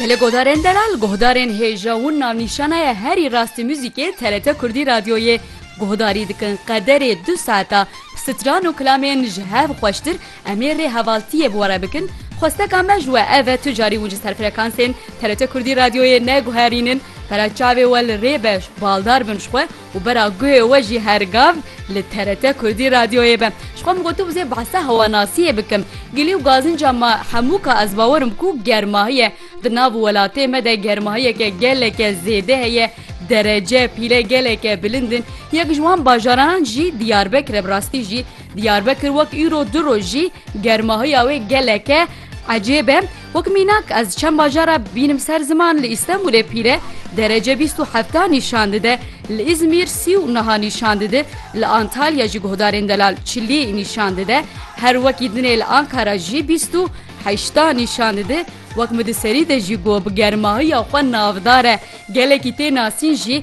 Belê Godarên Delal, guhdarên hêja û navnîşana ye herî rastî muzîkê TRT Kurdî Radyoyê guhdarî dikin. Qederê du saeta stran û kilamên ji hev xweştir em ê rê hevaltiyê bi we re bikin. Xwesteka me ji we ev e tu carî wincis her frekansên TRT Kurdî Radyoyê neguherînin, pera çavê we li rê be, baldar bin ji xwe. û bera guhê we jî her gav li TRT Kurdî radyoyê be. Ji xwe min got tu bizê behsa hewanasiyê bikim. Gilî û gazinca me hemû ka ez bawer im ku germahî ye. Di nav welatê me de germahiyeke geleke zêde heye, derece, pîle geleke bilind in. Yek ji wan bajaranan jî Diyarbekir e. Bi rastî jî Diyarbekir wek îro du roj jî germahiya wê geleke ecêb e. Wek mînak ez çend bajar a bînim ser ziman li Îstenbûlê pîre derece bîst û hefta nîşan dide, li Îzmîr sî û niha nîşan dide, li Antalya jî guhdarên delal çilî nîşan dide, her wekî dinê li Ankara jî bîst û heşta nîşan dide, wek min di serî de jî got bi germahiya xwe navdar e, gelekî tê nasîn jî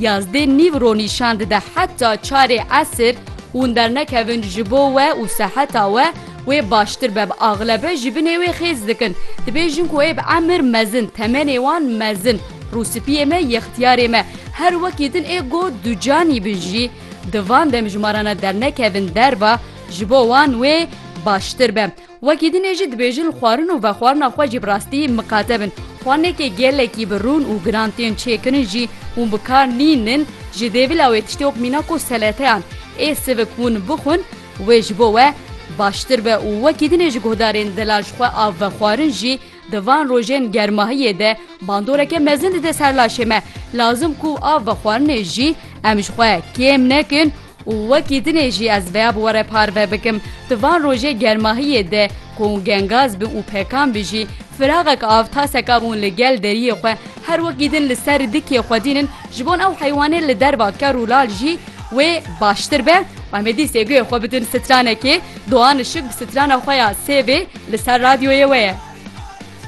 Yazdê nîv ro nîşan dide heta çarê esir hûn dernekevin ji bo we û seheta we wê baştir be. Bi axlebe ji binê wê xêz dikin. Dibêjin ku êb emir mezin, temenê wan mezin, rûspiyê me, yextiyarê me. Her wekî din ê go ducanî bin jî di van demjmarana dernekevin derva ji bo wan wê baştir be. Wekî din ê jî dibêjin li xwarin û vexwarina xwe jî bi rastî miqate bin. Xwarinekê gelekî bi rûn û giran tên çêkirin jî hûn bi kar nînin ji dêvila wê tiştê wek mîna ku seleteyan ê sivik hûn bixwin wê ji bo we baştir be û wekî din ê ji guhdarên dila ji xwe av vexwarin jî di van rojên germahiyê de bandoreke mezin dide ser laşê me. Lazim ku av vexwarinê jî em ji xwe kêm nekin Û wekî dinê jî ez veya bi were parve bikim, di van rojê germahiyê de ku hûn gengaz bin û pekan bin jî, firaxek av taseka bûn li gel deriyê xwe, her wekî din li ser dikê xwedînin, ji bon ew heywanê li derva ker û lal jî wê baştir be û em ê dîsê guhê xwe bidin stranekê, Doğan Işık bi strana xwe ya Sêvê li ser radyoyê we ye.